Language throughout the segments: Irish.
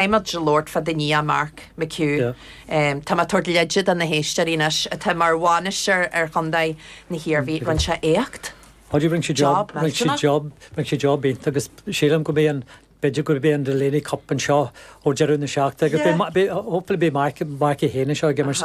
Muid ag labhairt fá do nia, Mark McHugh. Tá mé ag tabhairt leide do na héisteoirí anois atá mar bhainisteoir ar chontae na hIarmhí. Rinne sé éacht. Páidí, Rinne sé job millteanach. Rinne sé job iontach agus sílim go mbeidh an, b'fhéidir go mbeidh an Delaney Cup anseo ó deireadh na seachtaine. Hopefully beidh Mark é féin anseo ag imirt.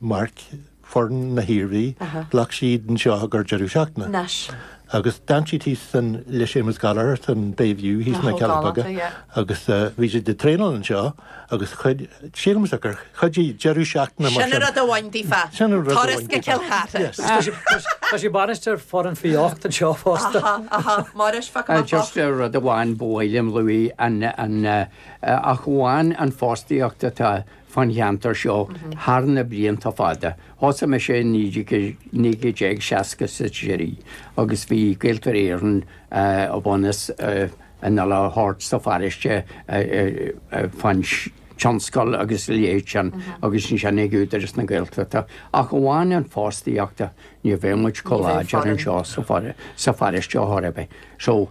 Mark, foireann na hIarmhí, ghlac siad anseo gur deireadh seachtaine. Anois. Agus d'fhan siad thíos san le Séamus Gallagher san Bay View thíos sna Cealla Beaga agus bhí siad ag traenáil anseo agus chuid, sílim is gur chuidigh deireadh seachtaine mar sin. Sin an rud amháin daofa. Sin an rud amháin daofa. Turas go Cill Chartha. Tá sé bainisteoir foireann faoi 8 anseo fosta. Aha, aha. Máiréis, fág amach bocht. Just rud amháin ba mhaith liom a lua ach amháin an fostaíocht atá. fán cheantar seo thar na blianta fada. Thosaigh mise i 1960 sa Sceirí agus bhí Gaeltarra Éireann a bhunas in a lá thart sa pharóiste fán tionscal agus a leithéid sin agus ansin ag Údarás na Gaeltachta ach amháin an fostaíochta ní bheadh muid chomh láidir anseo sa pharóiste chor ar bith so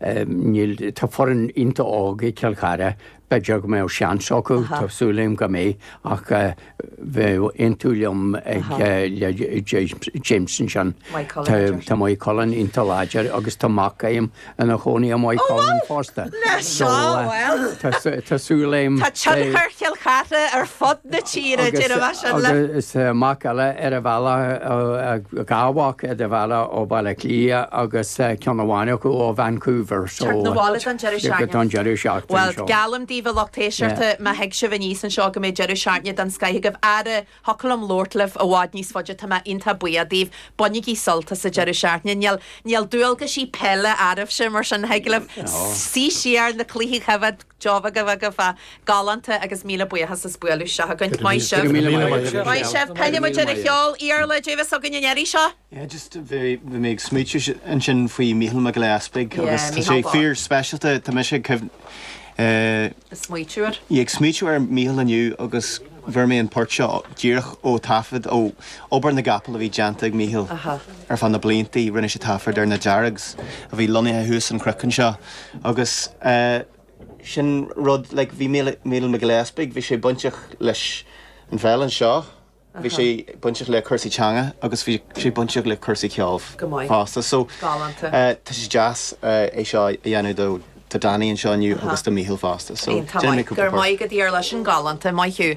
Níl, tá foireann iontach óg ag Cill Chartha, b'fhéidir go mbeadh seans acu, tá súil agam go mbeidh ach bheadh aontú liom ag le James ansin. Tá Maigh Cuilinn iontach láidir agus tá mac a'm ina chónaí i Maigh Cuilinn fosta. Tá súil a'm. Tá tionchar Chill Chartha ar fud na tíre, déarfaidh mé sin leat. Agus mac eile ar a bhealach, dhá mhac ar a bhealach ó Bhaile Átha Cliath agus ceann amháin acu ó Vancouver. Teacht na bhaile don deireadh seachtaine. Don deireadh seachtaine seo. Bhuel, geallaim daoibh a lucht éisteachta má thig sibh aníos anseo go mbeidh deireadh seachtaine den scoith agaibh. Ara, thiocfadh liom labhairt libh i bhfad níos faide, tá mé iontach buíoch daoibh. Bainigí sult as an deireadh seachtaine. Níl dualgaisí peile oraibhse mar sin thig libh suí siar na cluichí a choimhéad. Geobhadh a bheadh fa. Galánta agus míle buíochas as bualadh isteach chugainn. Maith sibh. Go raibh míle maith agat. Maith sibh. Caithfidh muid ar an cheol. Iarla Davis againn an iarraidh seo. Yeah just bhí mé ag smaoitiú ansin faoi Mícheál Mac Giolla Easpaig agus tá sé fíor speisialta tá mise ag smaoitiú air ag smaoitiú ar Mícheál inniu agus fuair mé an port seo díreach ó taifead ó obair na gcapall a bhí déanta ag Mícheál ar feadh na bliantaí. Rinne sé taifead ar na Deargs a bhí lonnaithe thuas an cnoc anseo agus sin rud like bhí Mícheál Mac Giolla Easpaig bhí sé bainteach leis an pheil anseo, bhí sé bainteach le cúrsaí teanga agus bhí sé bainteach le cúrsaí ceoil fosta so tá sé deas é seo a dhéanamh do Do Danny anseo inniu agus do Mícheál fosta so déanfaidh mé cúpla port. Go raibh maith agat, a Iarla, sin galánta, maith thú.